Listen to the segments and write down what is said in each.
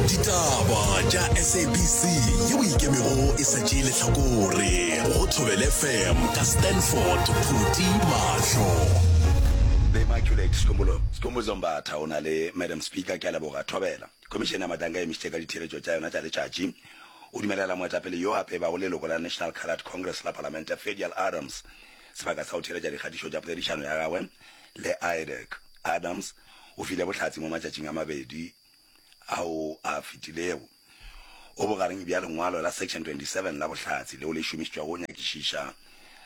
ditaba tša sabc ye o ikemego e sa tšee lehlakore go thobele fm ka stanford phuti mahlo the immaculate sikhumbulo sikhumbulo zombatha o na le madam speaker ke a leboga thobela khomišene ya matanga e emisitše ka ditheeletšo tša yona tša letšatši o dumelela moetapele yo a pebago leloko la national coloured congress la palamente fedial adams sebaka sa go theeletša dikgatišo tša poledišano ya gagwe le idec adams o file bohlatse mo matšatšing a mabedi ao a fetilego. O bogareng bja lengwalo la Section 27 la bohlatse leo le šomišitšwago go nyakišiša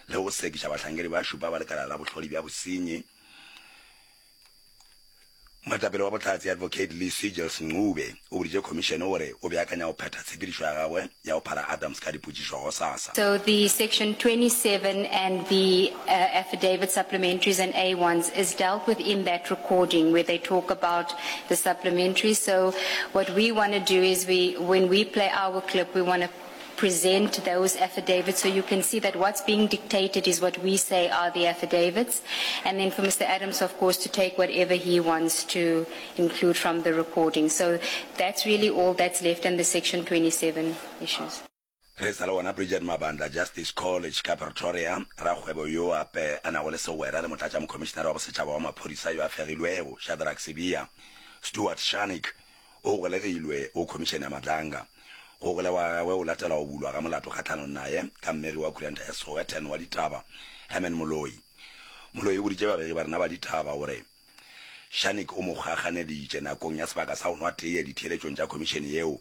le go sekiša bahlankedi ba šupa ba Lekala la Bohlodi bja Bosenyi. Moetapele wa bohlatse, Advocate Lee Seegels Ncube, o boditše Khomišene gore o beakanya go phetha tshepedišo ya gagwe ya go phala Adams ka dipotšišo gosasa. So the section 27 and the affidavit supplementaries and A ones is dealt with in that recording where they talk about the supplementaries. So what we want to do is we, when we play our clip, we want to present those affidavits. So you can see that what's being dictated is what we say are the affidavits. And then for Mr. Adams, of course, to take whatever he wants to include from the recording. So that's really all that's left in the Section 27 issues. re sa le gona bridget mabanda justice college ka pretoria rakgwebo yo ape a nago le segwera le motlatša mokhomišinara wa bosetšhaba wa maphodisa yo a fegilwego shadrack sebia stewart shanik O golegilwe go Khomišene ya Matlanga. Go golegwa ga gagwe go latela go bulwa ga molato kgahlanong naye ka mmegi wa Khuranta ya Sowetan wa ditaba Herman Moloi. Moloi o boditše babegi ba rena ba ditaba gore Shanik o mo kgakganeditše nakong ya sebaka sa go nwa teye ditheeletšong tša khomišene yeo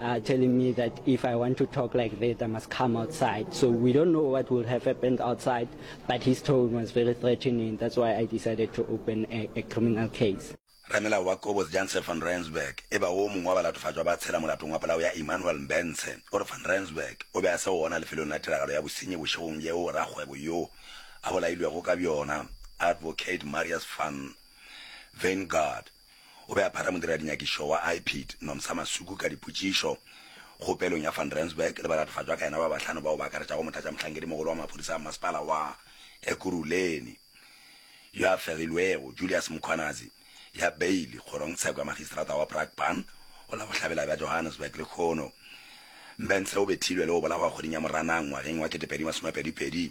are telling me that if I want to talk like that, I must come outside. So we don't know what will have happened outside, but his tone was very threatening. That's why I decided to open a, a criminal case. Ramelao wa Kobos Janse van Rensburg e ba wo mongwe wa balatofatšwa ba tshela molatong wa polao ya Emmanuel Mbentshe o re van Rensburg o be a se gona lefelong la tiragalo ya bosenyi bošegong yeo rakgwebo yo a bolailwego ka bjona Advocate Marius van Veingard o be a phara modirarinyakišo wa IPID, Nomsa Masuku ka dipotšišo kgopelong ya Van Rensburg le balatofatšwa ka yena ba bahlano bao ba akaretšago motlatšamohlankedimogolo wa maphodisa a masepala wa Ekurhuleni yo a fegilwego, Julius Mkhwanazi, ya beili kgorong tsheko ya magistrata wa Brakpan go la bohlabela bja Johannesburg lehono. Mbentse o bethilwe le go bolawa kgweding ya Moranang ngwageng wa 2022.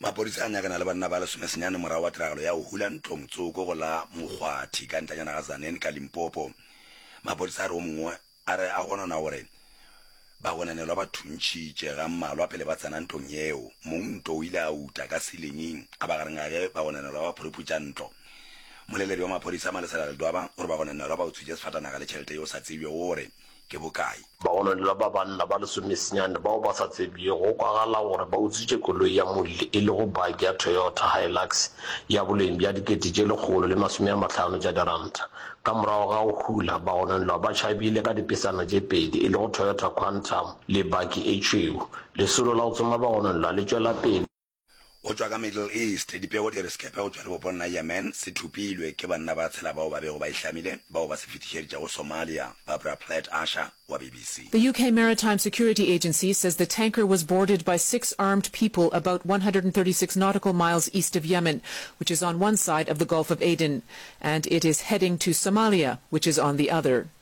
Mapodisa a nyakana le banna ba lesomesenyane morago ga tiragalo ya go hula ntlo motsoko go la Mokgwathi ka ntanyana ga Zanen ka Limpopo. Mapodisa a re o mongwe a re a gonona gore bagonanelwa ba thuntšhitše ga mmalwa pele ba tsena ntlong yeo. Mong nto o ile a uta ka silinging a ba gareng ga ge bagonanelwa ba phuruputša ntlo. Moleledi wa maphodisa Malesela Ledwaba o re bagonanelwa ba utswitše sefatanaga le tšhelete ye o sa tsebjego gore ke bokae. Bagononelwa ba banna ba lesomesenyane bao ba sa tsebjego go kwagala gore ba utswitše koloi ya molli e lego baki ya Toyota Hilux ya boleng bja dikete tše lekgolo le masome a mahlano tša diranta. Ka morago ga go hula, bagononelwa ba tšhabile ka dipesana tše pedi e lego Toyota Quantum le baki e tšhweu. Lesolo la go tsoma bagononelwa le tšwela pele. Go tšwa ka Middle East, dipego di re sekepe go tšwa lebopong la Yemen se thopilwe ke banna ba tshela bao ba bego ba e hlamile, bao ba se fetišeditše go Somalia. Barbara Plett Usher wa BBC. The UK Maritime Security Agency says the tanker was boarded by six armed people about one hundred and thirty six nautical miles east of Yemen, which is on one side of the Gulf of Aden, and it is heading to Somalia, which is on the other.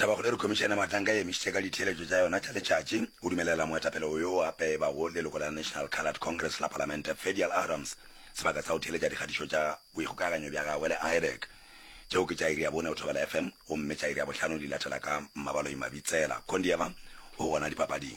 Tabakgolo re khomišene Mahlanka e emišitše ka ditheeletšo tša yona tša letšatši go dumelela moetapele o yo o apebago leloko la National Coloured Congress la Palamente Fedial Adams sebaka sa go theeletša dikgatišo tša boikgokaganyo bja gagwe le IREC tšeo ke tša iri ya bone go Thobela FM gomme tša iri ya bohlano di latela ka Mmabaloi Mabitsela Kondieva o gona dipapading.